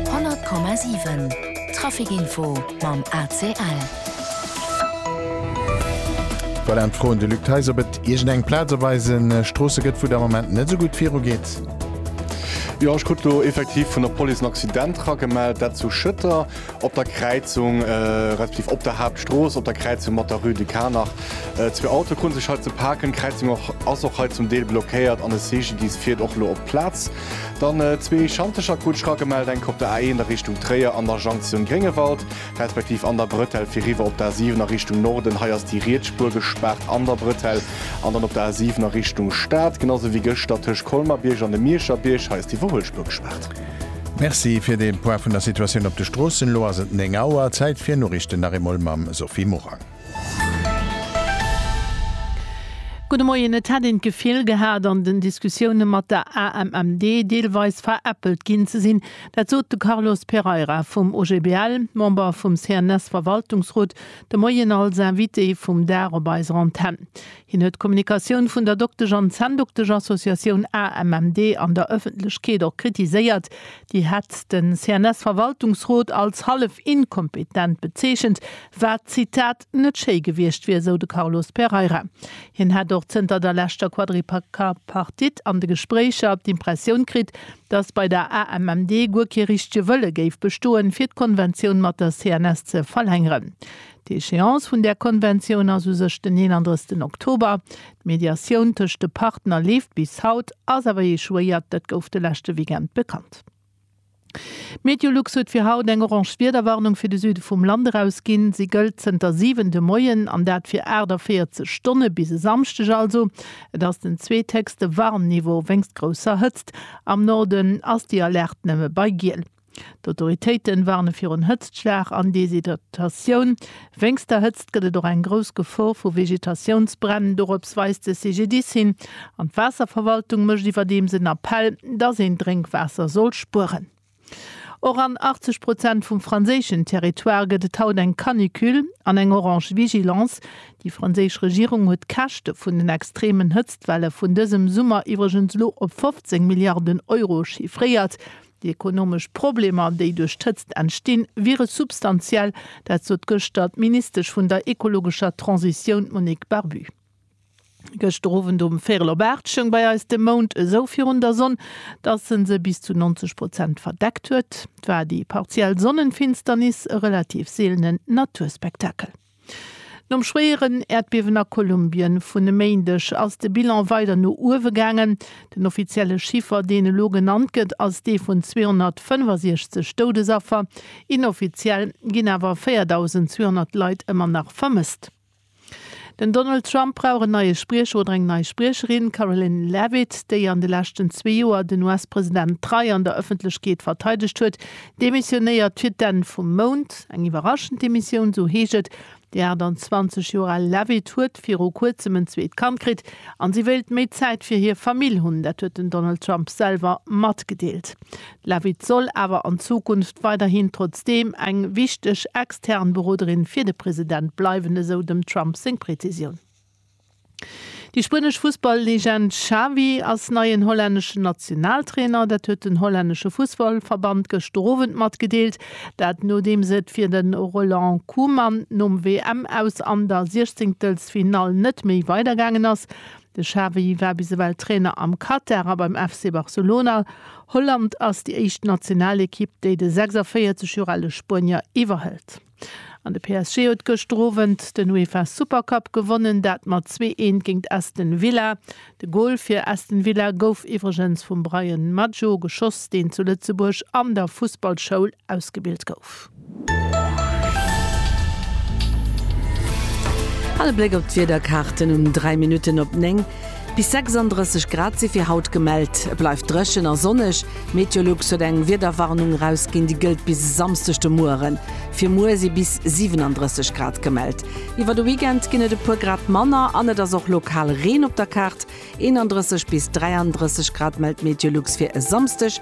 100,7 Trafic Info mam ACL. Voilà, d'Froen de Luc Theis, ob et iergend eng Plaz op eise Stroosse gëtt, wou et am Moment net esou gutt virugeet. Jo, ech krut elo effektiv vun der Police en Accident ragemellt, dat zu Schëtter op der Kräizung, respektiv op der Haaptstrooss op der Kräizung mat der Rue de Carnach. Zwee Autoe krute sech hei ze paken, d'Kräizung ass och hei zum Deel blockéiert an e CGDIS fiert och elo op d'Plaz. Dann zwee Schantecher Kutsch ragemellt, eng op der A1 a Richtung Tréier an der Jonktioun Gréngewald, respektiv an der Bretelle fir riwwer op d'A7 a Richtung Norden. Hei ass déi riets Spuer gespaart an der Bretelle an dann op der A7 a Richtung Stad, genau sou wéi gëschter tëscht Colmar-Bierg an dem Mierscher Bierg. Hei ass déi Iwwerhuelspuer gespaart. Merci fir dee Point vun der Situatioun op de Stroossen. Elo ass et 9 Auer, Zäit fir Noriichten nach eemol mam Sophie Morang. Gudde Moien. Et hätt een d'Gefill gehat, an den Diskussioune mat der AMMD deelweis veräppelt ginn ze sinn. Dat sot de Carlos Pereira vum OGBL, Member vum CNS-Verwaltungsrot, de Moien als Invité vum Dag op eiser Antenn. Hien huet d'Kommunikatioun vun der Doktesch an Zänndoktesch-Associatioun AMMD an der Ëffentlechkeet och kritiséiert. Déi hätt de CNS-Verwaltungsrot als hallef inkompetent bezeechent, wat, Zitat, net schéi gewiescht wier, sou de Carlos Pereira. Hien hätt och zënter der leschter Quadripartite an de Gespréicher d'Impressioun kritt, datt bei der AMMD guer kee richtege Wëlle géif bestoen, fir d'Konventioun mat der CNS ze verlängeren. D'Echéance vun där Konventioun ass u sech den 31 Oktober. D'Mediatioun tëscht de Partner leeft bis haut, ass awer ee Choix, dat gouf de leschte Weekend bekannt. Meteolux huet fir haut eng orange Wiederwarnung fir de Süde vum Land erausginn. Si gëllt zënter 7 de Moien an dat fir 48 Stonne, bis e Samschdeg also. Et ass den zweethéchste Warnniveau wéinst grousser Hëtzt. Am Norden ass déi Alerte nëmme bei Giel. D'Autoritéite warne virun Hëtztschlag an Deshydratatioun. Wéinst der Hëtzt gëtt et och eng grouss Gefor vu Vegetatiounsbränn, dorops weist de CGDIS hin. An d'Waasserverwaltung mécht iwwerdeems en Appell, dass een Drénkwaasser soll spueren. Och an 80 Prozent vum franséischen Territoire gëtt et haut eng Canicule an eng orange Vigilance. Déi franséisch Regierung huet d'Käschte vun den extremen Hëtztwelle vun dësem Summer iwwregens elo op 15 Milliarden Euro chiffréiert. Déi ekonomesch Problemer, déi duerch d'Hëtzt entstinn, wiere substantiell. Dat sot gëschter d'Ministesch vun der ekologescher Transitioun, d'Monique Barbu. Gëschter Owend um véierel op aacht stoung bei eis de Mound esou virun der Sonn, datt en se bis zu 90 Prozent verdeckt huet. Et war déi partiell Sonnenfinsternis, e relativ seelenen Naturspektakel. Nom schwéieren Äerdbiewen a Kolumbien vun e Méindeg ass de Bilan weider no uewe gaangen. Den offizielle Chiffer, deen elo genannt gëtt, ass dee vun 265 Doudesaffer. Inoffiziell ginn awer 4.200 Leit ëmmer nach vermësst. Den Donald Trump brauch en neie Spriecher oder eng nei Spriecherin. D'Karoline Leavitt, déi an de leschten zwee Joer den US-President trei an der Ëffentlechkeet verteidegt huet, Demissionéiert fir d'Enn vum Mount, eng iwwerraschend Demissioun, esou heescht et. Déi 28 Joer al Leavitt huet viru Kuerzem en zweet Kand kritt a si wéilt méi Zäit fir hir Famill hunn. Dat huet den Donald Trump selwer matgedeelt. D'Leavitt soll awer an Zukunft weiderhin trotzdeem eng wichteg extern Beroderin fir de President bleiwen, esou dem Trump seng Prezisioun. Déi spuenesch Fussball-Legend Xavi ass neien hollänneschen Nationaltrainer. Dat huet den hollännesche Fussballverband gëschter Owend matgedeelt. Dat nodeems et fir de Roland Koeman nom WM-Aus an der Siechzenktelfsfinall net méi weidergaangen ass. De Xavi war bis ewell Trainer am Katar a beim FC Barcelona. Holland ass déi éischt Nationalekipp, déi de 46 Joer ale Spuenier iwwerhëlt. An de PSG huet gëschter Owend den UEFA Super Cup gewonnen, dat mat zwee Eent géint Aston Villa. De Gol fir Aston Villa gouf iwwregens vum Bryan Maggio geschoss, deen zu Lëtzebuerg an der Fussballschoul ausgebilt gouf. Hei e Bléck op d'Wiederkaarten um 3 Minutten op 9. Bis 36 Grad si fir haut gemellt. Et bleift dréchen a sonneg. Meteolux huet eng Wiederwarnung erausginn, déi gëllt bis e Samsdeg de Mueren. Fir muer si bis 37 Grad gemellt. Iwwer de Weekend ginn et e puer Grad manner an et ass och lokal Reen op der Kaart. 31 bis 33 Grad mellt Meteolux fir e Samsdeg.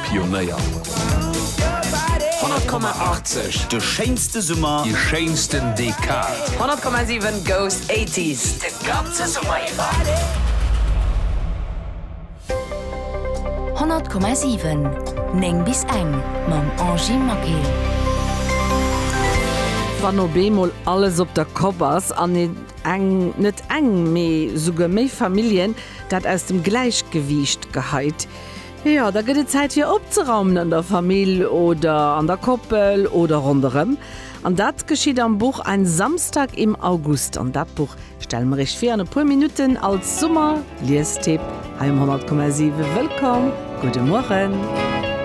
Pionéier. 100,80, De schéinste Summer. Déi schéinsten Dekad. 100,7 goes 80s de ganze Summer iwwer. 100,7 9 bis eng mam Angy Maquet. Wann op eemol alles op der Kopp ass an een eng, net eng, mee souguer méi Familljen, dat aus dem Gläichgewiicht geheit, Jo, da gëtt et Zäit fir opzeraumen an der Famill oder an der Koppel oder ronderëm. An dat geschitt am Buch Ein Samstag im August. An dat Buch stelle mer Iech vir an e puer Minutten als Summer-Liestipp hei um 100,7. Wëllkomm, gudde Mueren.